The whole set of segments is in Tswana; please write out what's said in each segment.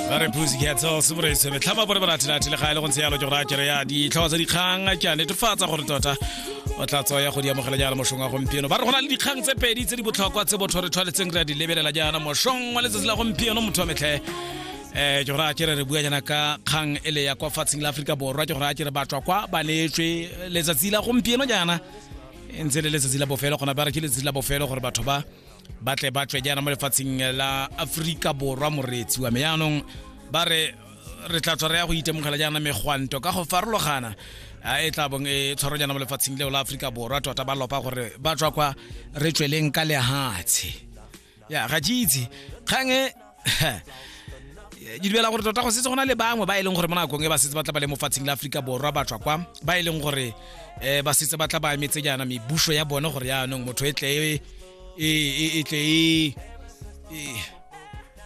ba re pusi ke tseo se bore se betlhama bore ba rathe rathe le ga ile go ntse yalo ke go rathe ya di tlhoa tsa dikgang ke a netefatsa gore tota o tla tswa ya go di amogela jaana moshong wa gompieno ba re go na le dikgang tse pedi tse di botlhokwa tse botho re tshwanetseng re a di lebelela jaana moshong wa letsatsi la gompieno motho wa metlhe eh ke gore a kere re bua jana ka kgang ele ya kwa fatsheng la Afrika Borwa ke gore a kere batswa kwa ba neetswe letsatsi la gompieno jaana e ntse le letsatsi la bofelo gona ba re ke letsatsi la bofelo gore batho ba ba tle ba tswe jaana mo lefatsheng la aforika borwa moreetsi wa me yaanong ba re re tla tswa re ya go itemogela jaana megwanto ka go farologana a e tla bong e tshwaro jaana mo lefatsheng leo la aforika borwa tota ba lopa gore ba tswa kwa re tsweleng ka lehatshe ya ga ke itse kgang e ke dumela gore tota go setse go na le bangwe ba e leng gore mo nakong e ba setse ba tla ba le mo fatsheng la aforika borwa ba tswa kwa ba e leng gore um ba setse ba tla ba emetse jaana mebuso ya bone gore yaanong motho e tle e, e, e, e tle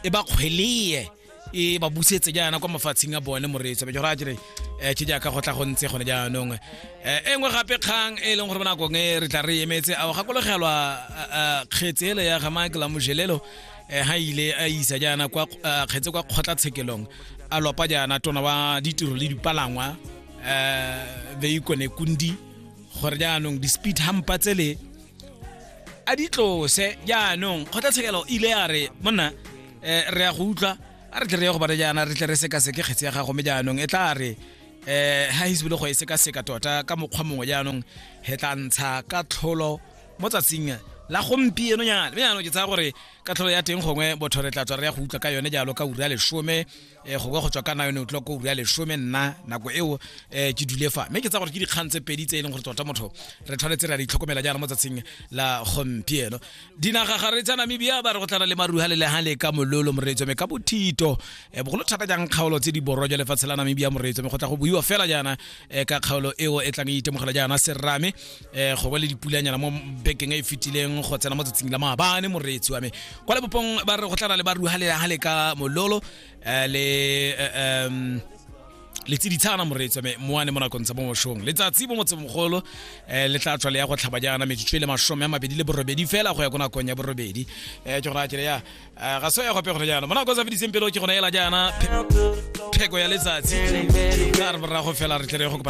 e ba kgweleye e ba busetse jaana kwa mafatsheng a bone moreetso be ke gore a kere um ke jaaka go tla go ntse gone jaanong um e nngwe gape kgang e leng gore mo nakong e re tla re emetse ao gakologelwa kgetsele ya ga michael amojelelo eh, ha ile a isa jaana kwa eh, kgetse kwa kgotlatshekelong a lopa jaana tona wa ditiro le dipalangwa um veikone kundi gore jaanong di-speed hampa tsele a di tlose jaanong kgotlatshekelo ile ya re monna um re ya go utlwa a re tle re ye go bana jaana re tle re sekaseke kgetse ya gago me jaanong e tla re um ha hisebile go e sekaseka tota ka mokgwa mongwe jaanong he tla ntsha ka tlholo mo tsatsing la gompieno nyana mme jaanong ke tsaya gore ka tlholo ya teng gongwe botho re tla tswa re ya go utlwa ka yone jalo ka ura ya lesome um gongwe go tswa ka na yone utlwa ko ura ya lesome nna nako eo um ke dule fa mme ke tsaya gore ke dikgang tse pedi tse e leng gore tota motho re tshwanetse re a ditlhokomela jaana mo tsatsing la gompieno dinaga ga re tsa namibia ba re go tlana le maruha le legang le ka mololo moreetso mme ka bothito um bogolo thata jang kgaolo tse di borwa jwa lefatshe la namibia moreetso mme go tla go buiwa fela jaana um ka kgaolo eo e tlang e itemogela jaana serame eh go ba le dipulanyana mo bekeng e fitileng go tsena mo tsatsing la maabane moreetsi wa me kwa lebopong ba re go tlana le ba ruhalela ha le ka mololo eh, le eh, um le tsiditshana moreetsi wa me moane mo nakong tsa mo moshong letsatsi mo motsemogolo um le tla tswa le ya go tlhaba jaana metsotso e le masome a mabedi le borobedi fela go ya ko nakong ya borobedi um ke gona kere ya eh, ga so ya gope gone jaana mo nakong tsa fediseng pele o ke gona ela jaana pheko ya letsatsi ka re borago fela re tlere go